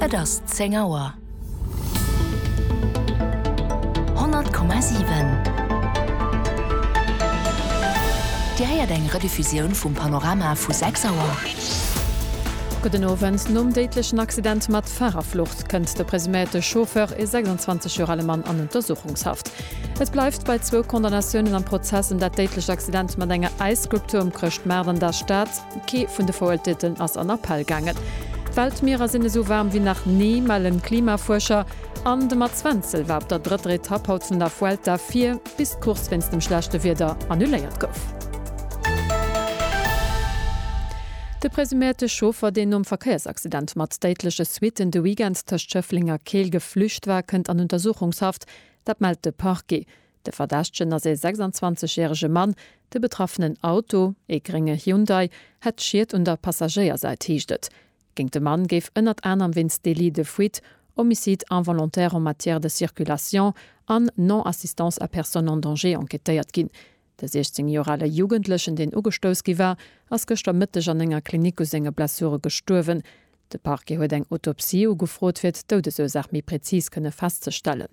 Et ass 10 Auer. 100,7 Dir héiert eng Rediffusioun vum Panorama vu 6 Auer. Gudden Owend. Nom déidlechen Accident mat Farerflucht kënnt de presuméierte Chauffeur, e 26 Joer ale Mann, an Untersuchungshaft. Et bleift bei zwou Condamnatiounen am Prozess ëm dat déidlecht Accident mat enger Äisskulptur um Chrëschtmaart an der Stad. Kee vun de Veruerteelten ass an Appell gaangen. D'Weltmierer sinn esou waarm wéi nach ni, mellen d'Klimafuerscher. An de Mats Wenzel war op der drëtter Etapp haut vun der Vuelta vir, bis d'Course wéinst dem schlechte Wieder annuléiert gouf. De presuméierte Chauffer, deen nom Verkéiersaccident mat déidleche Suitten de Weekend tëscht Schëffleng a Keel geflücht war, kënnt an Untersuchungshaft. Dat mellt de Parquet. De Verdächtegen ass ee 26 järege Mann. De betraffenen Auto, ee grénge Hyundai, hätt Schied un der Passagéiersäit, heescht et. Géint de Mann géif ënnert anerem wéinst Délit de fuite, Homicide involontaire en matière de circulation an Non-assistance à personne en danger enquêtéiert ginn. De 16 Joer ale Jugendlechen, deen ugestouss gi war, ass gëschter Mëtteg an enger Klinik u senge Blessure gestuerwen. De Parquet huet eng Autopsie ugefrot, fir d'Doudesursaach méi präzis kënne festzestellen.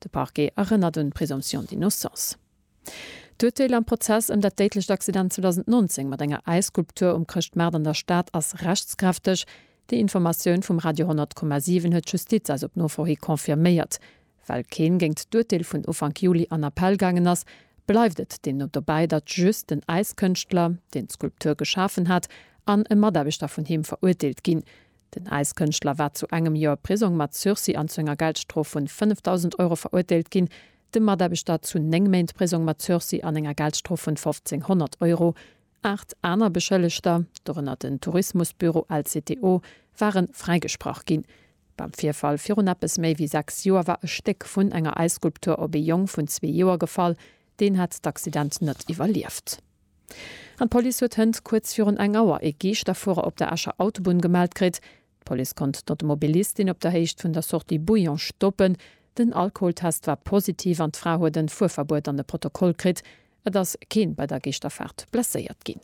De Parquet erënnert un d'Présomption d'innocence. D'Urteel am Prozess ëm dat déidlecht Accident 2019 mat enger Äisskulptur um Chrëschtmaart an der Stad ass rechtskräfteg. Déi Informatioun vum Radio 100,7 huet d'Justiz eis op Nofro hi confirméiert. Well keen géingt d'Urteel vun Ufank Juli an Appell gaangen ass, bleift et deemno dobäi, datt just den Äiskënschtler, deen d'Skulptur geschafen hat, an e Mataarbechter vun him verurteelt ginn. Den Äiskënschtler war zu engem Joer Prisong mat Sursis an zu enger Geldstrof vun 5.000 Euro verurteelt ginn, de Mataarbechter zu néng Méint Prisong mat Sursis an enger Geldstrof vun 1.500 Euro. Aacht aner Beschëllegter, dorënner den Tourismusbüro LCTO, ware fräigesprach ginn. Beim Virfall virun eppes méi wéi sechs Joer war e Stéck vun enger Äisskulptur op ee Jong vun zwee Joer gefall, Deen hat d'Accident net iwwerlieft. An d'Police huet hënt kuerz virun eng Auer ee Geeschterfuerer op der Escher Autobunn gemellt kritt. D'Police konnt d'Automobilistin op der Héicht vun der Sortie Bouillon stoppen. Den Alkoholtest war positiv an d'Fra huet en Fuerverbuet an e Protokoll kritt. Et ass keen bei der Geeschterfaart blesséiert ginn.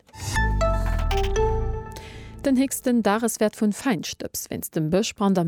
Den héchsten Dageswäert vun Feinstëbs wéinst dem Bëschbrand am.